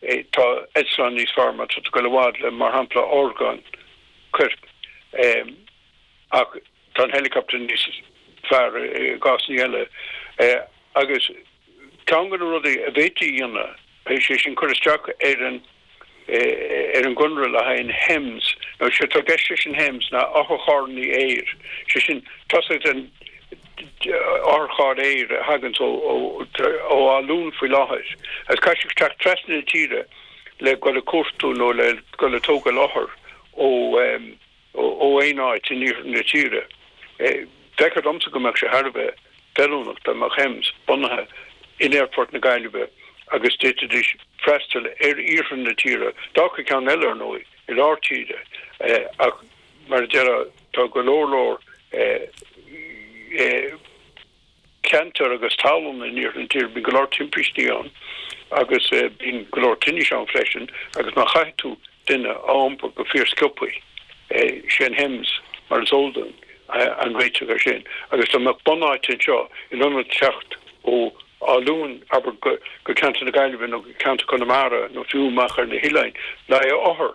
Tá eitleáin níos fearr má tá tú ag dul i bhfad le, mar shampla, orgáin coirp, ach tá an helicopter níos fearr i gcásanna eile. Agus ceann de na rudaí a bhféadfaí a dhéanamh, sé sin cur isteach ar an ar an gconradh le haghaidh an hems. Sé atá i gceist leis an hems ná otharcharrannaí aeir, sé sin tá's agat an, Otharcharr aeir a thaganns ó Áth Luain faoi láthair agus caithfidh sé teacht trasna na tíre le dhul ag cuartú nó le dhul ag tógail othar ó aon áit in iarthar na tíre. Feicthear dhomsa go mbeadh sé thar a bheith feiliúnach dá mbeadh Hems bunaithe in Aerfort na Gaillimhe agus d'fhéadfaidís freastal ar iarthar na tíre. D'fhágfá ceann eile, ar ndóigh, i lár tíre ach. Mar a déarfá, tá go leor leor ceantar agus talún in iarthar na tíre, bíonn go leor timpistí ann agus bíonn go leor tinnis ann freisin agus má chaithfidh tú duine a iompar go fíorsciopaí, sé'n hems mar is eol duinn an réiteach ar sin agus dá mbeadh bunáite anseo in ionad teacht ó Áth Luain abair go ceantar na Gaillimhe nó go ceantar Conamara nó fiú amach ar na hoileáin, le haghaidh othar.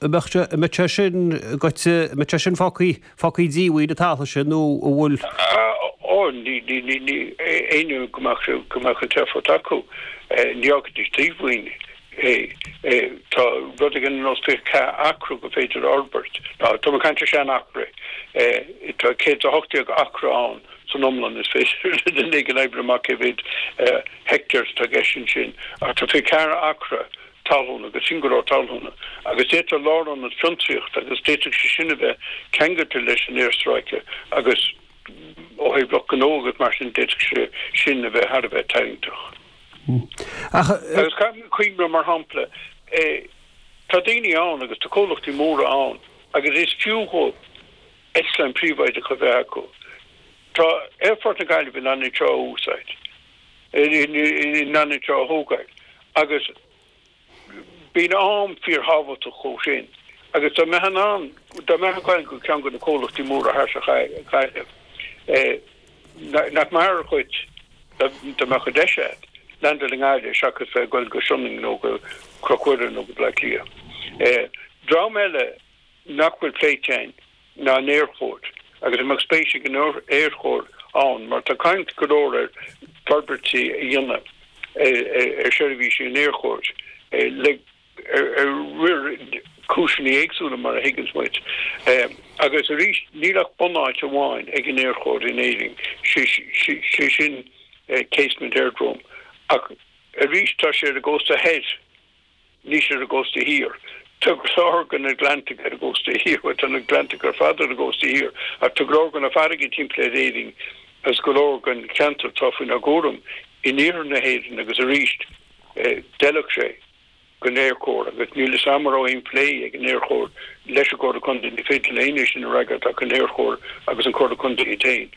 mbeadh sé, mbeadh sé sin goitse, mbeadh sé sin fágthaí, fágthaí díomhaoin an talamh sin nó an bhfuil. Ó ní, ní, ní, ní, éinne go mbeadh, go mbeadh an t-aerfort acu, ní fhágfaidís díomhaoin é, é, tá rud éigin ar nós fiche ceathair acra gur féidir a fhorbairt, ná tá mé ag caint ar sean acra, tá céad is a hocht déag acra ann san iomlán, is féidir le duine éigin oibriú amach cé mhéad hectares atá i gceist ansin ach tá fiche ceathair acra talúna agus sin go leor talúna agus d'fhéadfadh lárionad fiontraíochta agus d'fhéadfadh sé sin a bheith ceangailte leis an aerstráice agus ó thaobh lucht gnó agus mar sin d'fhéadfadh sé sin a bheith thar a bheith tarraingteach ach agus caithfimid cuimhneamh mar shampla tá daoine ann agus tá comhlachtaí móra ann agus is fiú dhóibh eitleáin príobháideacha a bheith acu tá aerfort na Gaillimhe in ann iad seo a úsáid. in ann iad seo a thógáil agus bíonn am fíor thábhachtach dhóibh sin agus dá mbeadh an am, dá mbeifeá ag goil go ceann de na comhlachtaí móra thart sa Ghaillimh nach mb'fhearr dhuit dá mbeadh an deis agat landáil i nGaillimh seachas bheith ag goil go Sionainn nó go Cnoc Mhuire nó go Baile Átha Cliath. Dream eile. nach bhfuil pléite againn ná an aerchóir agus an mbeadh spéis ag an aerchóir ann mar tá caint go leor ar fhorbairtí a dhéanamh ar sheirbhísí an aerchóir le ar go leor cúiseanna éagsúla mar a thuigeanns muid agus arís níl ach bunáit amháin ag an aerchóir in Éirinn sé sin Casement Aerodrome ach arís tá sé ar an gcósta thoir. Níl sé ar an gcósta thiar. Tá go leor de na gleannta ar an gcósta thiar. Bhuel, tá na gleannta ar fad ar an gcósta thiar, ach tá go leor de na farraigí timpeall ar Éirinn agus go leor den cheantar atá faoinár gcúram in iarthar na hÉireann agus arís, d'fheilfeadh sé don Aerchór agus níl 'fhios a'm a' raibh aon phlé ag an Aerchór leis an gComhairle Contae, ní féidir le aon é sin a fhreagairt ach an Aerchór agus an Comhairle Contae iad féin,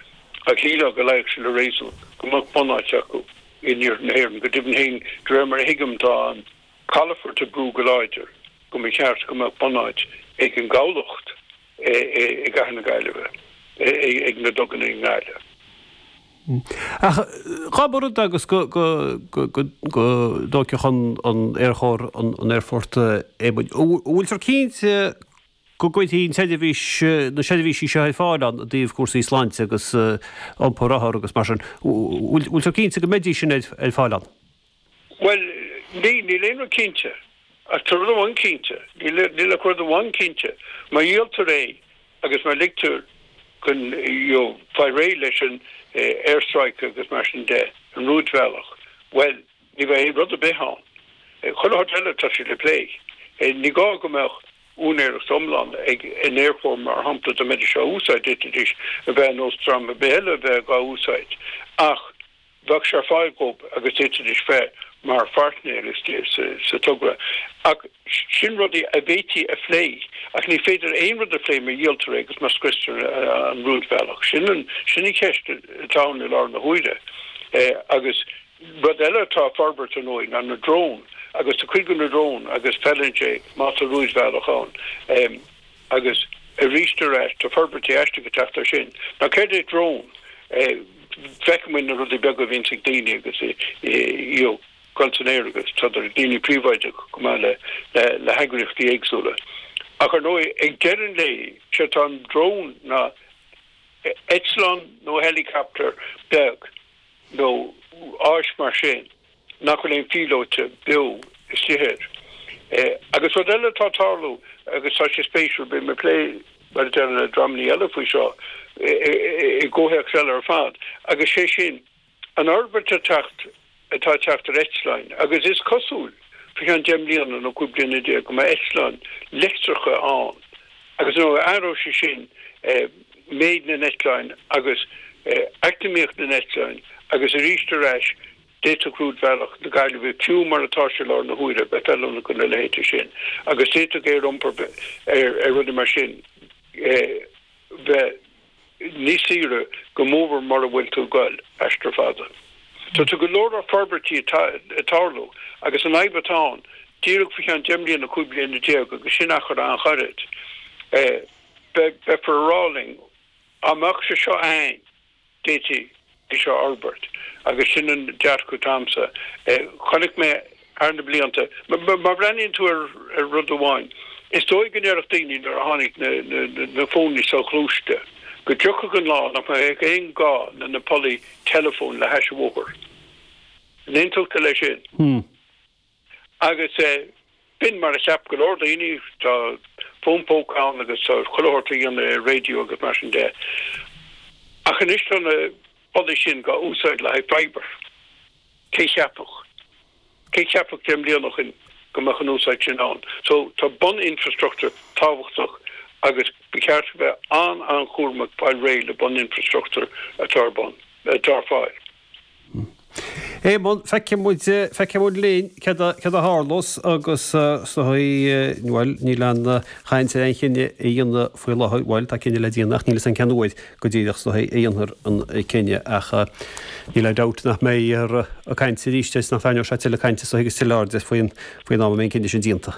ach shílfeá go luífeadh sé le réasún go mbeadh bunáit acu. In iarthar na hÉireann, go deimhin féin, de réir mar a thuigim, tá an calaphort ag brú go láidir go mba ceart go mbeadh bunáit ag an gcabhlach i gcathair na Gaillimhe, ag na duganna i nGaillimh. Ach cá bhfios agus go dtóigfeadh an Aerchór an aerfort. An bhfuiltear cinnte? go gcuirfí an tseirbhís na seirbhísí seo ar fáil ann i dtaobh cúrsaí sláinte agus iompar othar agus mar sin. Bhfuiltear cinnte go mbeidís sin ar fáil ann? Bhuel, níl aon rud cinnte. Ach tá rud amháin cinnte, níl ach rud amháin cinnte, má dhíoltar é agus má ligtear chun a fáil réidh leis an aerstráice agus mar sin de, an rúidbhealach, bhuel, Ní bheidh rud ar bith ann. Chuile shórt eile tá sé le plé. Ní gá go mbeadh úinéireacht iomlán ag an Aerchór mar shampla dá mbeidís á úsáid, d'fhéadfaidís a bheith ar nós dream ar bith eile a bheith dhá úsáid ach bheadh sé ar fáil dhób agus d'fhéadfaidís bheith mar pháirtnéir sa togra. Ach sin rudaí a bhféadfaí a phlé. Ach ní féidir aon rud a phlé má dhíoltar é agus má scriostar an rúidbhealach. Sin an cheist atá ann i láthair na huaire agus. Rud eile atá ag forbairt ar ndóigh ná na drón agus tá cuid de na drón agus feileann sé má tá rúidbhealach ann. Agus aríst tá forbairtí aisteacha ag teacht air sin. Ná céard é drón? Feiceann muid na rudaí beaga a bhíonns ag daoine agus iad ag goil san aer agus tá idir daoine príobháideach chomh maith le heagraíochtaí éagsúla. Ach ar ndóigh ag deireadh an lae sé atá an drón ná eitleán nó helicopter beag. nó áis mar sin nach bhfuil aon phíolóta beo istigh ar é. Agus rud eile atá ag tarlú agus tá sé spéisiúil, bhí mé ag plé le deireanaí le dreamannaí eile faoi seo i gcomhthéacs eile ar fad, agus sé sin an fhorbairt atá teacht atá ag teacht ar eitleáin agus is cosúil faoi cheann deich mbliana nó cúig bliana déag go mbeidh eitleáin leictreacha ann agus nó athróidh sé sin méid na n-eitleáin agus eacnamaíocht na n-eitleáin agus arís ar ais d'fhéadfadh rúidbhealach na Gaillimhe, fiú mar atá sé i láthair na huaire, bheith feiliúnach do na leithéide sin agus d'fhéadfadh aer iompair ar rudaí mar sin bheith níos saoire go mórmhór mura bhfuil tú ag goil aistear fada. Tá, tá go leor forbairtí ag tarlú agus an fhadhb atá ann díreach faoi cheann deich mbliana, cúig bliana déag agus sin achar an-ghairid. Beifear a rá linn, dá mbeadh sé seo a'ainn, d'fhéadfaí é seo a fhorbairt agus sin an dearcadh atá a'msa. Chonaic mé thar na blianta, má bhreathnaíonn tú ar rud amháin, is dóigh go ndéarfadh daoine nuair a tháinig na fóin soghluaiste go dtiocfadh an lá nach mbeadh aon gá le na pollaí teileafóin le hais an bhóthair. An aontódh tú leis sin? Hm. Agus b'in mar a cheap go leor daoine, tá fón póca ann agus tá chuile shórt le déanamh ar raidió agus mar sin de. Ach anois tá na pollaí sin dhá úsáid le haghaidh fibre. Cé a cheapfadh, cé a cheapfadh deich mbliana ó shin go mbeadh an úsáid sin ann? So tá bun-infreastruchtúr tábhachtach agus ba cheart a bheith an-an-chúramach fáil réidh le bun-infreastruchtúr atá ar bun, atá ar fáil. Éamonn, feicfidh muid, feicfidh muid linn céard a, céard a tharlós agus sa chaoi, bhuel níl aon chaint ar aon chinneadh a dhéanamh faoi láthair, bhuel tá cinneadh le déanamh ach níl fhios a'inn cén uair go díreach sa chaoi a ndéanfar an cinneadh ach níl aon dabht nach mbeidh orainn caint arís agus nach dtarraingeoidh sé tuilleadh cainte agus tuilleadh airde faoin, faoin am a mbeidh an cinneadh sin déanta.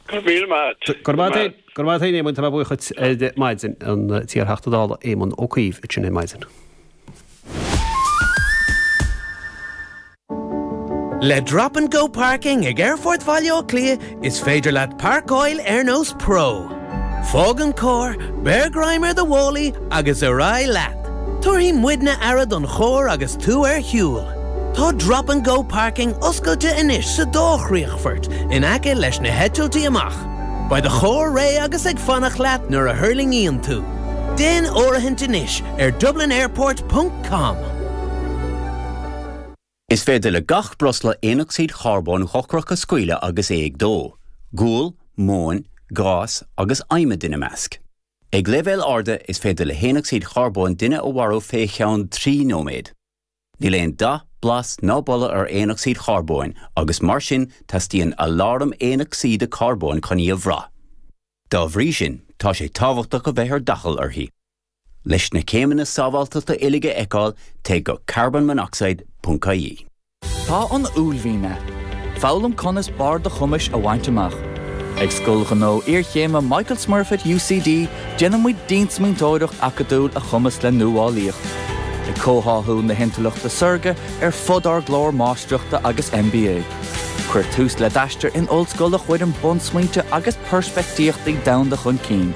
Go míle maith at, Go raibh maith at. Go raibh maith at, Éamonn, tá mé buíoch duit ar maidin, an t-iar-Theachta Dála Éamon Ó Cuív ag caint linn ar maidin. Le Drop and Go Parking ag Aerfort Bhaile Átha Cliath is féidir leat parcáil ar nós pro. Fág an carr, beir greim ar do mhálaí agus ar aghaidh leat! Tabharfaidh muidne aire don charr agus tú ar shiúl. Tá 'Drop and Go Parking' oscailte anois sa dá chríochfort in aice leis na heitiltí amach. Beidh do charr réidh agus ag fanacht leat nuair a thuirlingíonn tú. Déan áirithint anois ar dublinairport.com. Is féidir le gach breosla aonocsaíd charbóin dhochrach a scaoileadh agus é ag dó, gual, móin, gás agus adhmad ina measc. Ag leibhéil arda is féidir le haonocsaíd charbóin duine a mharú fé cheann trí nóiméad. Níl aon dath, blas ná boladh ar aonocsaíd charbóin agus mar sin teastaíonn aláram aonocsaíde carbóin chun í a bhrath. Dá bhrí sin tá sé tábhachtach a bheith ar d'fhaichill uirthi. Leis na céimeanna sábháilteachta uilig a fheiceáil, téigh go carbonmonoxide.ie. Tá an uaillmhian ann. Foghlaim conas barr do chumais a bhaint amach. Ag Scoil Ghnó Iarchéime Michael Smurfit UCD déanaimid diansmaointeoireacht acadúil a chumasc le nuálaíocht. Ag comhtháthú na hintleachta saorga ar fud ár gclár Máistreachta agus MBA. Cuir tús le d'aistear in ollscoil a chuireann bunsmaointe agus peirspictíochtaí domhanda chun cinn.